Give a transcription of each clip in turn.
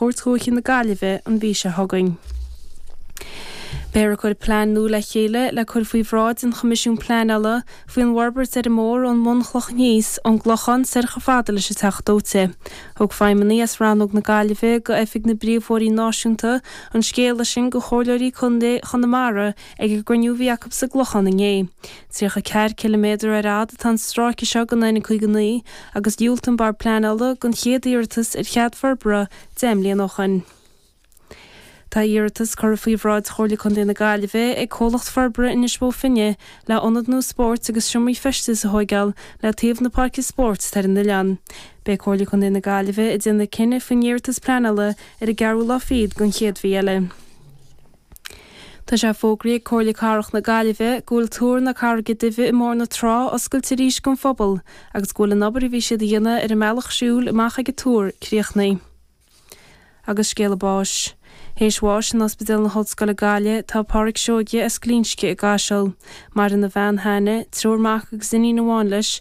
Chúirt Dhúiche na Gaillimhe an mhí seo chugainn. Beifear a' cur plean nua le chéile le cur faoi bhráid an Choimisiúin Pleanála faoi an bhforbairt ar an mbóthar ón mbunchloch aníos, ón gClochán soir chomh fada leis an Teach Dóite. Thug feidhmeannaigh as Rannóg na Gaillimhe go Oifig na bPríomhbhóithrí Náisiúnta an scéala sin go Chomhairleoirí Contae Chonamara, Ag an gcruinniú a bhí acu sa gClochán inné, 34 ciliméadar ar fhad atá an stráice seo den N59 agus dhiúlt an Bord Pleanála gon chéad iarratas ar chead forbartha deich mbliana ó shin. Tá iarratas curtha faoi bhráid Chomhairle Contae na Gaillimhe ag Comhlacht Forbartha Inis Bó Finne le ionad nua spóirt agus seomraí feistis a thóigeáil le taobh na páirce spóirt atá ar an oileán. Beidh Comhairle Contae na Gaillimhe a' déanamh cinneadh faoin iarratas pleanála ar an gceathrú lá fichead gon chéad mhí eile. Tá sé fógraithe ag Comhairle Cathrach na Gaillimhe go bhfuil Túr na Carraige Duibhe i mBóthar na Trá oscailte arís don phobal agus go bhfuil an obair a bhí siad a dhéanamh ar an mbealach siúil amach ag an túr críochnaithe. Agus scéala báis. Théis bháis in Ospidéal na hOllscoile Gaillimh tá Páraic Seoige as Glinsce i gCaiseal. Maireann a bhean Hannah, triúr mac agus iníon amháin leis,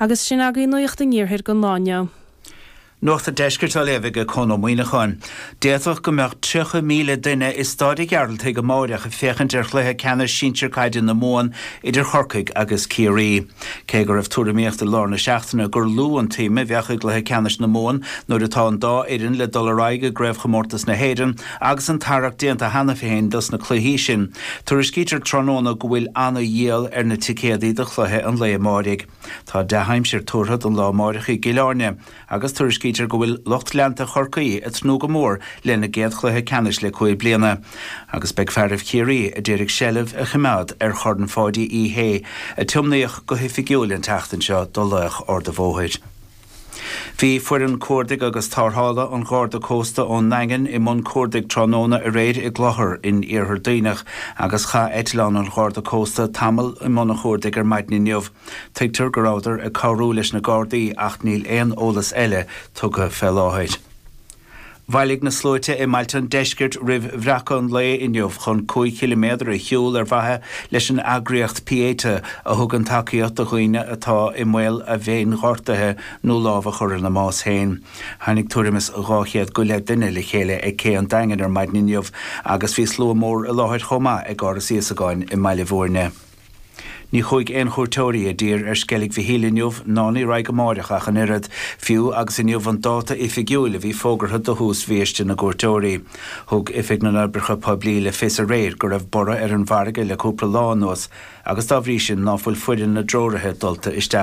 Agus sin agaibh Nuacht an Iarthair don lá inniu. Nuacht an Deiscirt á léamh ag Conn Ó Muíneacháin. D'fhéadfadh go mbeadh 30,000 duine i Staid a' Ghearaltaigh amáireach ag féachaint ar chluiche ceannais sinsir caide na Mumhan idir Chorcaigh agus Ciarraí. Cé go raibh tuairimíocht i lár na seachtaine gur lú an tsuim a bheadh i gcluiche ceannais na Mumhan nuair atá an dá fhoireann le dul ar aghaidh i gCraobhchomórtas na hÉireann, Agus an tarrac déanta cheana féin dos na cluichí sin, tuairiscítear tráthnóna go bhfuil ana-dhíol ar na ticéadaí do chluiche an lae amáirigh. Tá dea-aimsir tuartha don lá amáireach i gCill Áirne agus tuairiscítear go bhfuil lucht leanta Chorcaí ag tnúth go mór lena gcéad chluiche ceannais le cúig bliana agus beidh fearaibh Chiarraí a d'iarraidh seilbh a choimeád ar Chorn Pháidí Uí Shé, a tiomnaíodh go hoifigiúil an tseachtain seo do laoch Ard a' Bhóthair. Bhí foireann cuardaigh agus tarrthála an Gharda Cósta ón nDaingean i mbun cuardaigh tráthnóna aréir i gClochar in Iarthar Duibhneach agus chaith eitleán an Gharda Cósta tamall i mbun a chuardaigh ar maidin inniu. Tuigtear go rabhadar ag cabhrú leis na Gardaí ach níl aon eolas eile tugtha fé láthair. Bhailigh na sluaite i mbailte an deiscirt roimh bhreacadh an lae inniu chun cúig chiliméadar a shiúl ar mhaithe leis an eagraíocht Pieta, a thugann tacaíocht do dhaoine atá i mbaol a bhféinghortuithe nó lámh a chur ina mbás féin. Tháinig tuairim is dhá chéad go leith duine le chéile ag Cé an Daingin ar maidin inniu agus bhí slua mór i láthair chomh maith ag Áras Íosagáin i mBaile Bhúirne. Ní chuaigh aon chuairteoirí i dtír ar Sceilg Mhichíl inniu ná ní raghaidh amáireach ach an oiread, fiú agus inniu an dáta oifigiúil a bhí fógartha do thús bhiaiste na gcuairteoirí. Thug Oifig na nOibreacha Poiblí le fios aréir go raibh borradh ar an bhfarraige le cúpla lá anuas agus dá bhrí sin ná fuil foireann na dtreoraithe dulta isteach